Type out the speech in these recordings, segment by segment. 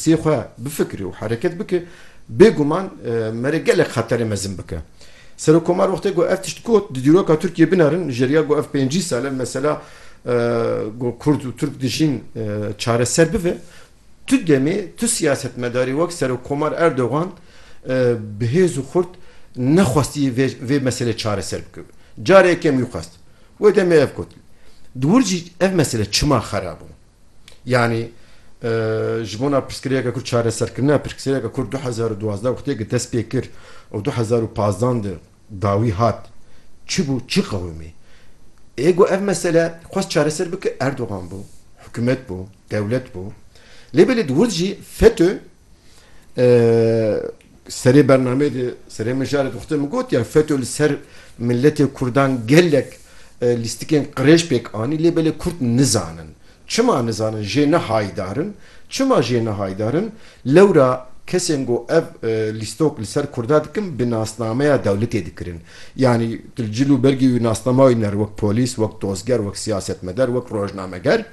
Sê xwe bifikirî û hereket bikî, bêguman merê gelek xeterê mezin bike. Serokkomar wextê ku ev tişt got, di dîroka Tirkiyê binerin, ji riya ku ev pêncî sal e mesela ku kurd û tirk dijîn çareser bibe, tu demê tu siyasetmedarî wek Serokkomar Erdogan bi hêz û xurt nexwestiye vê meselê çareser bike. Careke yekem wî xwest. Wê demê ev got. Di wir jî ev mesele çima xera bû? Yanî ji bona pirsgirêka ku çareserkirina pirsgirêka ku du hezar û duwazdeh wextê ku dest pê kir û du hezar û pazdan de dawî hat çi bû çi qewimî? Ê ku ev mesele xwest çareser bike Erdogan bû, hikûmet bû, dewlet bû. Lê belê di wir jî FETÖ Serê bernameyê de serê mijarê de xute min gotiya FETÖ li ser miletê Kurdan gelek lîstikên qirêj pêk anî lê belê Kurd nizanin. Çima nizanin jê ne haydar in? Çima jê ne haydar in? Lewra kesên ku ev lîstok li ser Kurda dikin bi nasnameya dewletê dikirin. Yanî tu li cil û bergî wî nasnama wî diner wek polîs, wek dozger, wek siyasetmeder, wek rojnameger.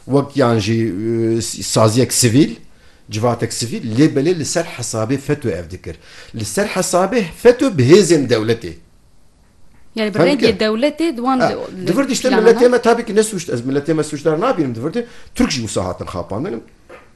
wek yan jî saziyek sivîl, civatek sivîl lê belê li ser hesabê FETÖ ev dikir. Li ser hesabê FETÖ bi hêzên dewletê. Yani bi Hem rengê dikir. dewletê di wan li- Di vir diştin planana- miletê me tabii ki ne suçdar, ez miletê me suçdar nabînim di vir de Türk jî wisa hatin xapandin.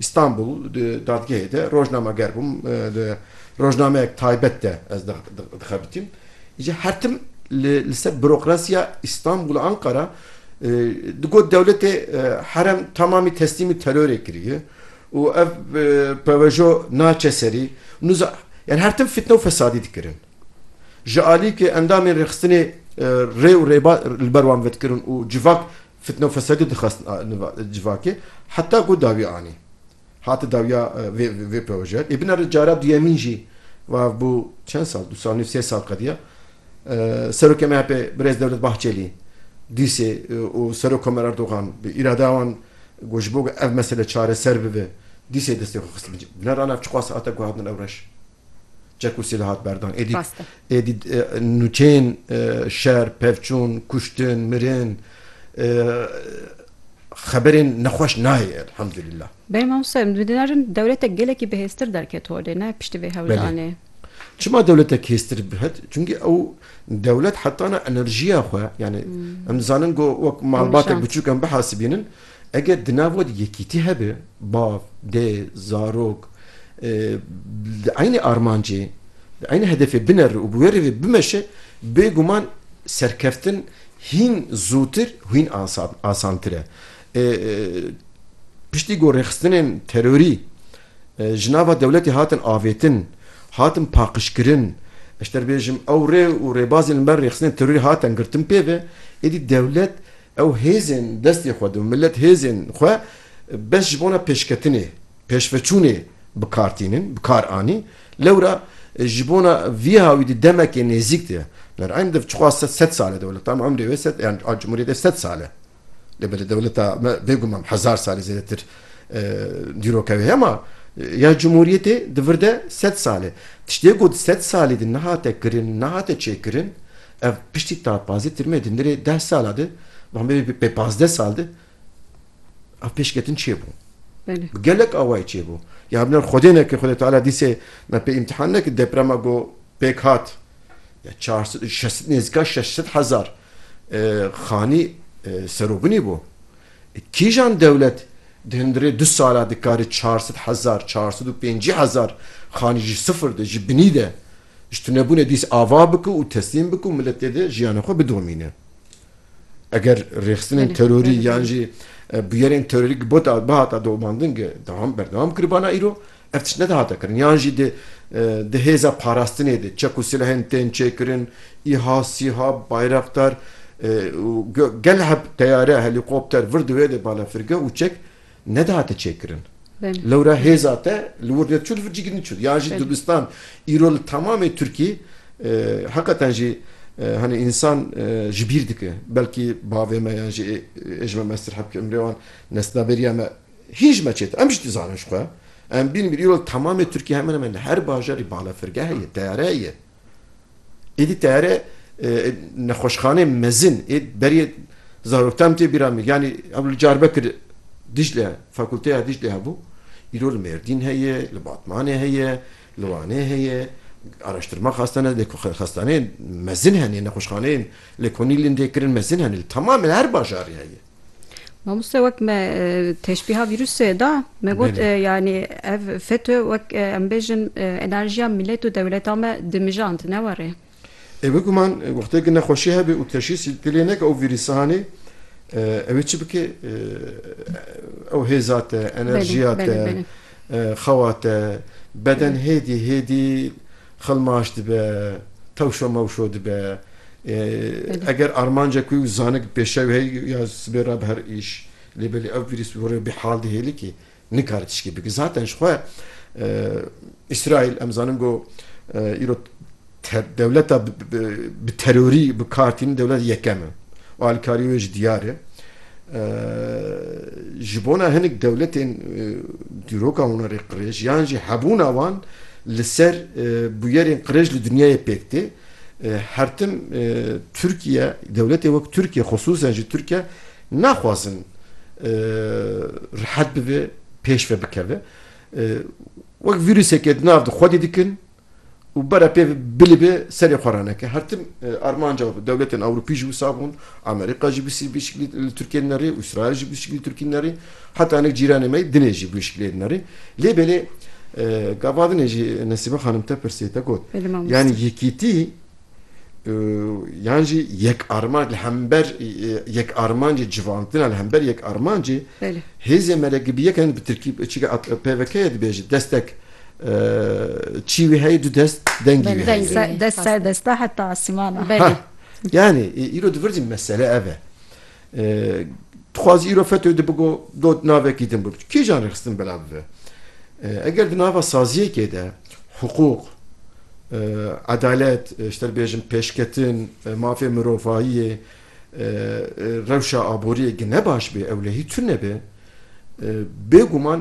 Îstanbul di dadgehê de rojnameger bûm, di rojnameyek taybet de ez dixebitîm. Îcar her tim li ser burokrasiya Îstanbul Anqara digot dewletê herem tamamî teslîmî terorê kiriye û ev pewejo naçe serî. Nûza yanî her tim fitne û fesadî dikirin. Ji alî ke endamên rêxistinê rê û rêbaz li ber wan vedikirin û civak Fitne û fesadî dixwest civakê heta ku dawî anî. Hate dawiya vê proje. Ê binare cara duyemîn jî wav bû çend sal du sal nîv sê sal qediya Serokê MHP'ê Birêz Dewlet Bahçelî dîsê û Serok Komer Erdogan bi îradeya wan got ji bo ku ev mesele çareser bibe dîsê destê xwe xist bin cî. Binare ana ev çiqas hate guhadin ewreş. Çek û sîl hat berdan. Êdî êdî nûçeyên şer, pevçûn, kuştin, mirin xeberên nexweş nayê elhamdulillah. Belê mamoste em dibêjin dewletek gelekî bihêztir derket holê ne piştî vê hewldanê. Çima dewletek hêztir bihat? Çimkî ew dewlet hetana enerjiya xwe yani em dizanin ku wek malbatek biçûk em bihasibînin Eger di nav we de yekîtî hebe, bav, dê, zarok di eynî armancê, di eynî hedefê bineri û bi wê rêvê bimeşe, bêguman serkeftin hîn zûtir û hîn asantir e. Piştî ku rêxistinên terorî ji nava dewletê hatin avêtin, hatin paqijkirin, ez ji te re bêjim ew rê û rêbazên li ber rêxistinên terorî hatine girtin pê ve, êdî dewlet Ew hêzên destê xwe di milet hêzên xwe bes ji bona pêşketinê, pêşveçûnê bi kar tînin, bi kar anîn. Lewra ji bona vî hawî di demekê nêzîk de ner eyn div çiqas sed sed sal e dewleta me umrê wê sed yan a cumhuriyetê sed sal e. Lê belê dewleta me bêguman hezar salê zêdetir dîroka wê heye ma ya cumhuriyetê di vir de sed sal e. Tiştê ku di sed salê de nehate kirin, nehate çêkirin, Ev piştî ta pazdeh tirmê di nirê deh sala de bamê bi pê pazdeh sal de ev pêşketin çêbû. Bi gelek awayî çêbû. Ya binêr Xwedê neke Xwedê Teala dîsê me pê îmtîhan nekir deprema ku pêk hat ya çar sed û şeş nêzîka şeş sed hezar xanî serobinî bû. Kîjan dewlet di hundirê du sala dikarî çar sed hezar çar sed û pêncî hezar xanî ji sifir de ji binî de Ji tunebûnê dîs ava bike û teslîm bike û miletê de jiyana xwe bidomîne. Eger rêxistinên terorî yan jî bûyerên terorîk bihata domandin ke dewam berdewam kiribana îro ev tişt nedihata kirin yan jî di di hêza parastinê de çek û silehên tên çêkirin îha, sîha, bayraktar û gel heb teyare, helîkopter vir di wê de balafirgeh û çek Nedihate çêkirin. Lewra hêza te li wir neçû li vir cîgirî çû. Yan jî dibistan îro li temamê Tirkî heqeten jî hani însan ji bîr dike. Belkî bavê me yan jî ê ji me mestir hebke emrê wan nesnaberiya me hîn ji me çêtir. Em jî dizanin ji xwe. Em bînin îro li temamê Tirkî hemen hemen li her bajarî balafirgeh heye, teyare heye. Êdî teherê nexweşxanê mezin ê beriyê zaroktan min tê bîra min yanî ew li Carbekir Dîcle fakulteya Dîclê hebû îro li Mêrdîn heye, li Batmanê heye, li Wanê heye, araştirma xastane lê ku xastaneyên mezin hene nexweşxaneyên lê ku nîlên dê kirin mezin hene li temamê her bajarê heye. Mamoste wek me teşbîha vîrusê da me got e, yanî ev FETÖ wek e, em bêjin e, enerjiya millet û dewleta me dimijand ne warê. Ê biguman e, wextê ku nexweşî hebe û teşhîsî dilê neke ew vîrîsahanê e, ew ê çi bike? E, ew hêza te, enerjiya te. Xewa te beden hêdî hêdî xilmaş dibe, tewşo mewşo dibe. Eger armanca ku zanik pêşew hey ya sibê re bi her îş lê belê ev vîrus bi gorî bihal dihêli kî nikare tişkî bike. Zaten ji xwe Îsraîl em zanin ku îro Dewleta bi terorî bi kar tînin dewleta yekem e û alîkarî wê jî diyar e. Ji bona hinek dewletên dîroka wan rê qirêj yan jî hebûna wan li ser bûyerên qirêj li dinyayê pêk tê. Hertim Tirkiye, dewletên wek Tirkiye xisûsen jî Tirkiye naxwazin rihet bibe, pêş ve bikeve. Wek vîruseke di nav de xwedî dikin û bere pê bilibê serê xwe re neke. Her tim armanca dewletên Ewropî jî wisa bûn, Amerîka jî bû bi şiklî li Tirkiyê dinerê, Îsraîl jî bû bi şiklî li Tirkiyê dinerê, heta hinek cîranê me yî dinê jî bû şiklê dinerê. Lê belê gava dinê jî Nesîme xanim te pirsî te got, yanî yekîtî, yan jî yek armanc li hember yek armancê civantina li hember yek armancê hêzê me re gibiyek em bi tirkî çîka pvkê dibêje destek çî wî heye du dest dengî wî heye dest ser desta heta asîmana yanî îro di vir jî mesele ev e Dixwazî îro FETÖ di bigo do navekî din bû. Kîjan rêxistin belav bibe? Eger di nava saziyekê de hiqûq, edalet, ji te re bêjim pêşketin, mafê mirovayiyê, rewşa aboriyê gine baş bê, ewlehî tune be, bêguman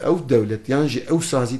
ew dewlet yan jî ew sazî,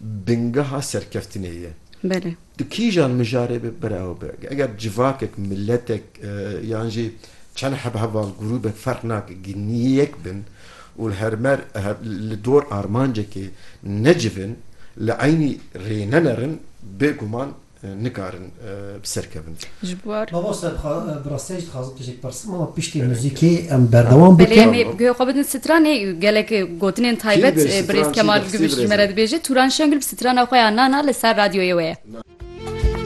bingeha serkeftinê ye. Belê. Di kîjan mijarê be bira ew be. Eger civakek, miletek yan jî çend heb heval grûbek ferq nake gînnî yek bin û li hermer li dor armancekê necivin, li eynî rê nenerin bêguman nikarin bi ser kevin. Mamoste bi rastî jî dixwazim tu jî pirsim mama piştî muzîkê em berdewam bikin. Belê em ê guhê xwe bidin stranê gelek gotinên taybet birêz Kemal Guvîş ji me re dibêje Turan Şengil bi strana xwe ya Nana li ser radyoyê we ye.